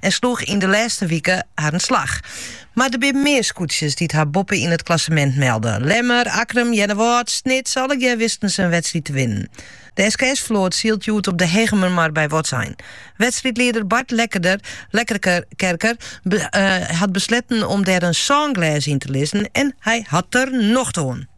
en sloegen yn de lêste wike harren slach. Mar der binne mear skûtsjes dy't har boppe yn it klassemint melde. Lemmer, Akkrum, Earnewâld, Snits, allegear wisten se in wedstriid te winnen. De SKS float sylt hjoed op de Hegemermar by Wâldsein. Wedstriidlieder Bart Lekkerkerker hat besletten om dêr in sânglês yn te lizzen en hy hat der nocht oan.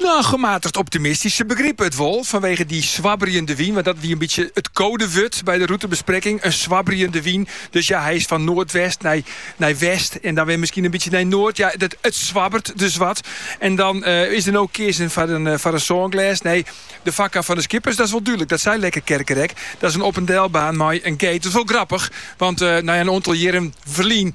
No, gematigd optimistysk. Se begripe it wol fanwege dy swabberjende wyn, want dat wie in bytsje it kodewurd by de routebesprekking, in swabberjende wyn. Dus ja, hy is fan noardwest nei nei west en dan wer miskien in bytsje nei noard. Ja, dat it swabbert dus wat. En dan eh, is der no keazen foar in foar in sânglês. Nee, de foarkar fan de skippers, dat is wol dúdlik. Dat sei Lekkerkerker ek. Dat is in op-en-delbaan mei in gate. Dat is wol grappich, want eh, ja in oantal jierren ferlyn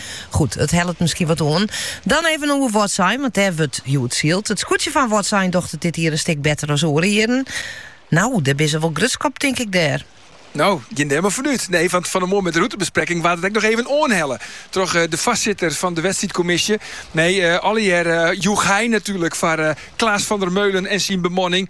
Goed, it hellet miskien wat oan. Dan even oer Wâldsein, want dêr wurdt hjoed syld. It skûtsje fan Wâldsein docht it dit jier in stik better as oare jierren. No, dêr binne se wol grutsk op, tink ik dêr? No, gean dêr mar fan út. Nee, want fan 'e moarn mei de routebespreking waard it ek noch even oanhelle troch de foarsitter fan de wedstriidkommisje. Nee, allegear each hy natuerlik foar Klaas van der Meulen en syn bemanning.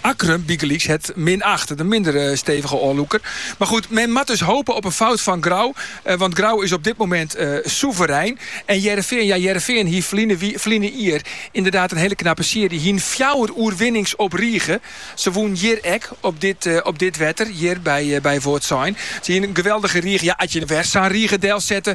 Akkrum bygelyks hat, mei in achtste minder stevige ôflûker,. Mar goed, men moat dus hope op in fout fan Grou, want Grou is op dit moment soeverein. En Hearrenfean, ja Hearrenfean hie ferline jier ynderdaad in hele knappe searje, hiene fjouwer oerwinnings op rige. Se wûnen hjir ek op dit wetter, hjir by Wâldsein. Se hiene in geweldige rige, ja as je wer sa'n rige delset,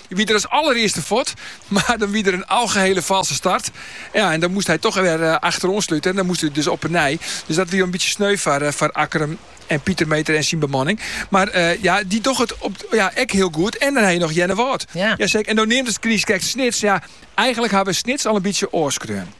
Hy wie der as allerearste fuort, mar dan wie der in algehiele falske start. Ja, en dan moast hy toch wer achteroan slute en dan moast hy dus op 'e nij. Dus dat wie in bytsje sneu foar, foar Akkrum en Pieter Meeter en syn bemanning. Mar eh, ja, dy docht it op, ja, ek hiel goed. En dan ha je noch Earnewâld. Ja. seker. En do neamdest krekt Snits. Ja, eigenlik ha we Snits al in bytsje ôfskreaun.